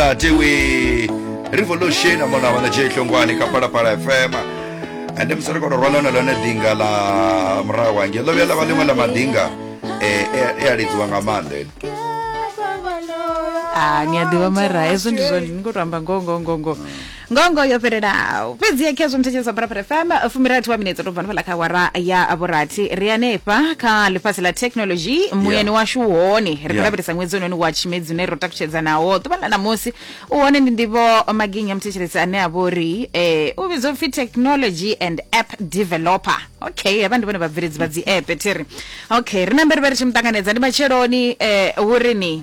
tewe revolution amona vana je hlongwane ka palapala fm ande mi sori kono rwala na lone dinga la murahu wange lo vela va lin'we la madinga eh, eh, eh, alidziwa nga maanḓa ene ah ni a ḓivha mara hezwo ndi zwone ni khou tou amba ngoho ngoho ngoho ngoho ngongo yo fhelelaho fhedziha khezwo muthetshelesa pharapara fm fumirathi wa minetse to bva nofhala kha wara ya vhurathi ri hanefha kha ḽifhasi ḽa thekhinolodzhi muyani washu u hone ri khou Yeah. lavhelesa ṅwedzi ononi wa tshimedzi une ro takutshedza nawo ḓuvha ḽa ṋamusi u hone ndi ndivho maginya muthetshelesi ane a vha uri eh, u vhidzwa upfi technology and app developer okay havha ndi vhone vhabveledzi vha dzi app thiri okay ri na mberi vha ri tshi muṱanganedza ndi matsheloni eh, hu ri ni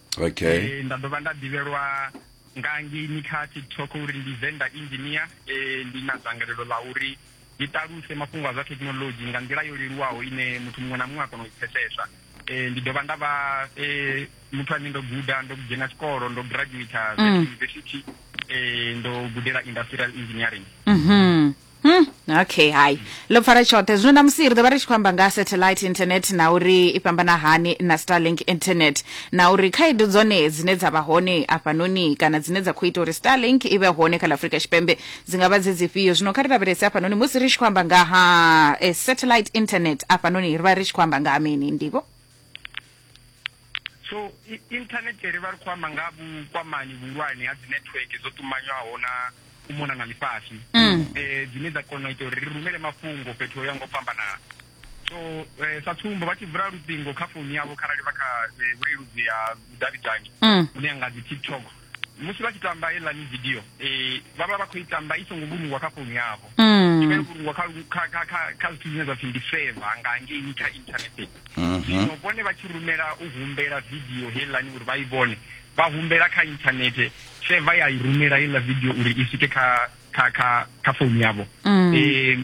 okay e, nda dovha nda ḓivhelwa nga ngeini kha tiktok uri ndi venda engineer e, ndi na dzangalelo ḽa uri ndi ṱaluse mafhungo a zwa thekhinolodzhi nga nḓila yo leluwaho ine muthu muṅwe na muṅwe a kona u i pfesesa e, ndi dovha nda vha e, muthu ane ndo guda ndo dzhena tshikolo ndo graduata mm. university e, ndo gudela industrial engineering mm -hmm. Hmm, okay hai ḽo pfara tshoṱhe zwino na musi ri ḓo vha ri tshi khou amba nga ha satellite internet na uri i fhambana hani na starlink internet na uri khaedu dzone dzine dza vha hone afhanoni kana dzine dza khou ita uri starlink i vhe hone kha ḽa afurika tshipembe dzi nga vha dze dzifhio zwino kha ri lavhelese afhanoni musi ri tshi khou amba nga ha eh, satellite internet afhanoni ri vha ri tshi khou amba nga ha mini ndivho so internet ri vha ri khou amba nga vhukwamani vhuhulwane ha dzi network dzo ṱumanywaho na u mona na ḽifhasi um mm. eh, dzine dza kona u ita uri ri rumele mafhungo fhethu ho ya ngo fhambanana so eh, sa tsumbo vha tshi vula luṱingo kha founu yavho kharali vha kha eh, vhuleludzi ha vhudavhidzani mm. hune ya nga dzi tiktok musi vha tshi tamba heiḽani video um vha vha vha khou i tamba i songo vhulungwa kha founu yavho mm. i vha yo vhulungwa kha zwithu zwine zwa pfhi ndi seva nga ngeini kha inthanethe mhm. zwino vhone vha tshi rumela u humbela video heiḽani uri vha i vhone vha humbela kha inthanethe seva ya i rumela heiḽa video uri i swike kha kha kha kha founu yavho um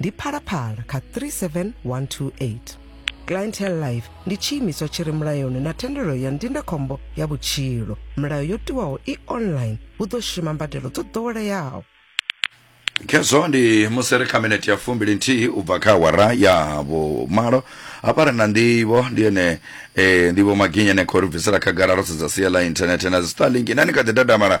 ndi phalaphala kha 37128 clientele life ndi tshiimiswa tshi re mulayoni na thendelo ya ndindakhombo ya vhutshilo milayo yo tiwaho i online hu ḓo shuma mbadelo dzo ḓoweleaho khezwo ndi musi ri kha minete ya fumbili nthihi u bva kha awara ya vhumalo hafha ri na ndivho ndi ene e, ndivho maginya ne khou ri bvisela khagala ro sedza sia ḽa inthanethe na dzi starlink nani kha ḓi dadamala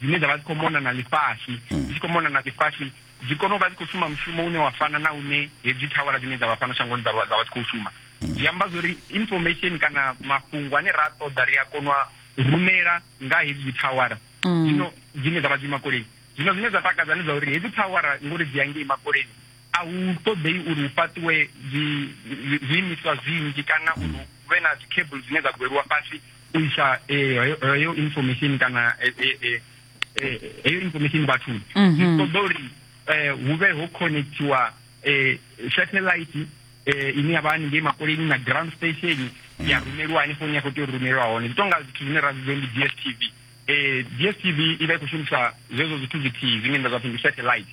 dzine dza vha dzi khou mona na ḽifhasi hmm. dzi tshi khou mona na ḽifhasi dzi kone u vha dzi khou shuma mushumo une wa fana na une hedzi thawara dzine dza vha fhano shangoni dza vha dzi khou shuma hmm. zwi amba zwa uri information kana mafhungo ane ra ṱoḓa ri a kona u rumela nga hedzi thawara hmm. zwino dzine dza vha dzi makoleni zwino zwine zwa takadza ndi zwa uri hedzi thawara ngori dzi ya ngei makoleni A hu ṱoḓei uri hu fhaṱiwe zwiimiswa zwinzhi kana uri hu vhe na dzi cable dzine dza gweliwa fhasi u isa eh, heyo information kana eh, eh, heyo information vhathuni mhm. zwi ṱoḓa uri um hu vhe ho connectiwa um satellite um ine ya vha haningei makoleni na ground station mm. ya rumeliwa hanefho ni ya khou tea u rumelwa hone zwi tonga zwithu zwine ra zwidzo ndi d s t v um d s t v i vha i khou shumisa zwezwo zwithu zwithihi zwine nda zwa pfhi ndi satellite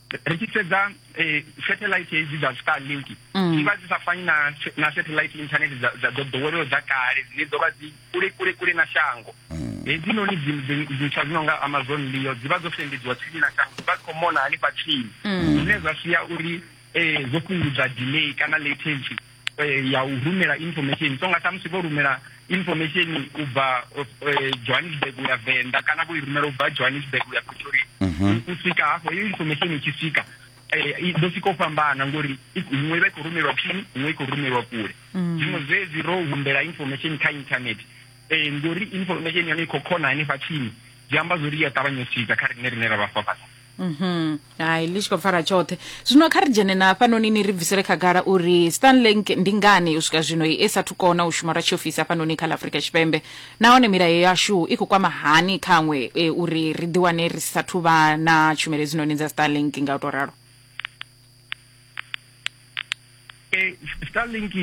ri tshi sedza eh, satellite hedzi dza starlink dzi mm. vha dzi sa fani na na satellite internet dza dza dzo ḓoweleho dza kale dzine dzo vha dzi kule kule kule na shango mm. hedzinoni ntswa dzi no nga amazon leo dzi vha dzo sendedziwa tsini na shango dzi vha dzi khou mona hanefha tsini mm. zwine zwa sia uri um zwo fhungudza delay kana latency eh, ya u rumela information so nga samusi vho rumela information u bva eh, johannesburg u ya venḓa kana vho i rumela u bva johannesburg u ya pretoria mhm. u swika hafho iyo information i tshi swika eh, ḓo sika u fhambana ngori iṅwe vha i khou rumelwa phini iṅwe i khou rumelwa kule mm. zwiṅwe zwezwi ro humbela information kha internet um ngori information yone i khou khona hanefha tsini zwi amba zwo ri ya ṱavhanya u swika kha riṋe rine ra vha fafasa Mhm. Hai ḽi tshi khou pfala tshoṱhe. Zwino kha ri dzhene na hafhanoni ni ri bvisele khagala uri Starlink ndi ngani u swika zwino i sa thu kona u shuma lwa tshiofisi hafhanoni kha ḽa Afrika Tshipembe. Nahone milayo yashu i khou kwama hani khaṅwe e, uri ri ḓi wane ri sa thu vha na tshumelo hedzinoni dza Starlink nga u to ralo. e, starlink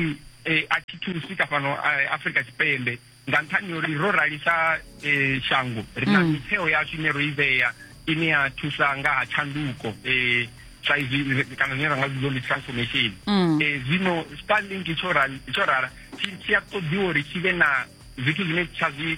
e, a thi thusi ka fhano eh, afrika tshipembe nga nṱhani uri ro ralisa e, shango ri na mm. mitheo yashu ine ro i vhea ine ya thusa nga ha tshanduko um sa izwi kana zwine ra nga zwidzo ndi transformation um zwino starlink tsho rala tshi a ṱoḓiwa uri tshi vhe na zwithu zwine tsha zwi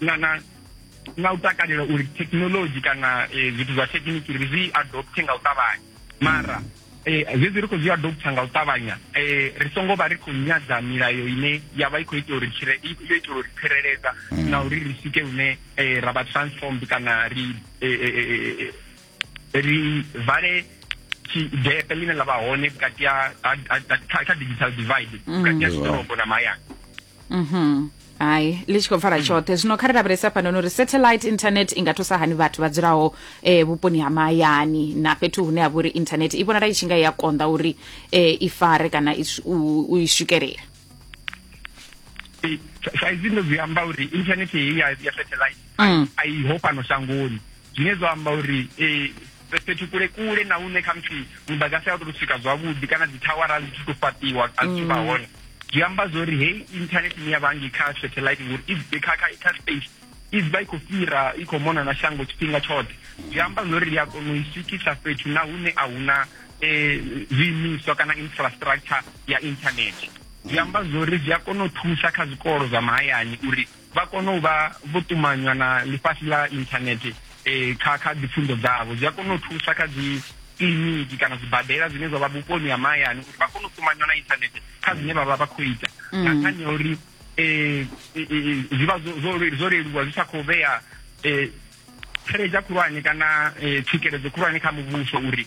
na na na u takalela uri thekhinolodzhi kana eh, zwithu zwa thekhiniki ri zwi adopte nga u ṱavhanya mara eh, zwezwi ri khou zwi adopta nga u ṱavhanya eh, ri songo vha ri khou nyadza milayo ine ya vha i khou ita uri yo itela uri tsireledza mm. na uri ri swike hune ra vha transformed kana ri ri vale tshigete ḽine ḽa vha hone vhukati ha digital divide mm. vhukati ha zwiḓorobo na mahayani mhm hai ḽi tshi khou pfala tshoṱhe zwino kha ri lavhelesa fhanoni uri satellite internet i nga thusa hani vhathu vha dzulaho um vhuponi ha mahayani na fhethu hune ha vha uri internet i vhonala i tshi nga i a konḓa uri um i fare kana u i swikelela saizi ndo zwi amba uri internet heyi ya satellite mm. a i ho fhano shangoni zwine zwa amba uri um fhethu kule kule na hune khamusi mudagasi a u tou swika zwavhuḓi kana dzi thawara a dzi thu to fhaṱiwa a dzi thu vha mm. hone zwi amba zwo uri heyi internet ine ya vha ngi kha satellite ngori i kha kha kha space i vha i khou fhira i khou mona na shango tshifhinga tshoṱhe zwi amba zwo ri a kona u i swikisa fhethu na hune a huna um zwiimiswa kana infrastructure ya internet zwi amba zwo ri zwi a kona u thusa kha zwikolo zwa mahayani uri vha kona u vha vho ṱumanywa na ḽifhasi ḽa internet um eh, kha kha dzipfunzo dzavho zwi a kona u thusa kha dzi kiliniki kana zwibadela zwine zwa vha vhuponi ha mahayani uri vha kone u ṱumanywa na internet kha zwine vha vha vha khou ita mm. nga nṱhani ya uri um zwi vha zwo leluwa zwi sa khou vhea um tsheledzha khulwane kana um tswikeledzo khulwane kha muvhuso uri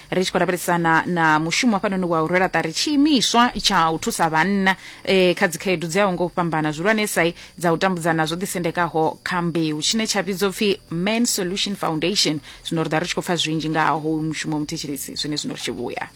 ri tshi khou lavhelesana na mushumo hafhanoni wa u rwela ṱari tshiimiswa tsha u thusa vhanna eh, kha dzikhaedu dzi aho ngo fhambana zwihulwanesai dza u tambudzana zwo ḓisendekaho kha mbeu tshine tsha vhidzwa pfi man solution foundation zwino ri ḓa ri tshi khou pfa zwinzhi nga ha hoyu mushumo muthetshelesi zwine zwino ri tshi vhuya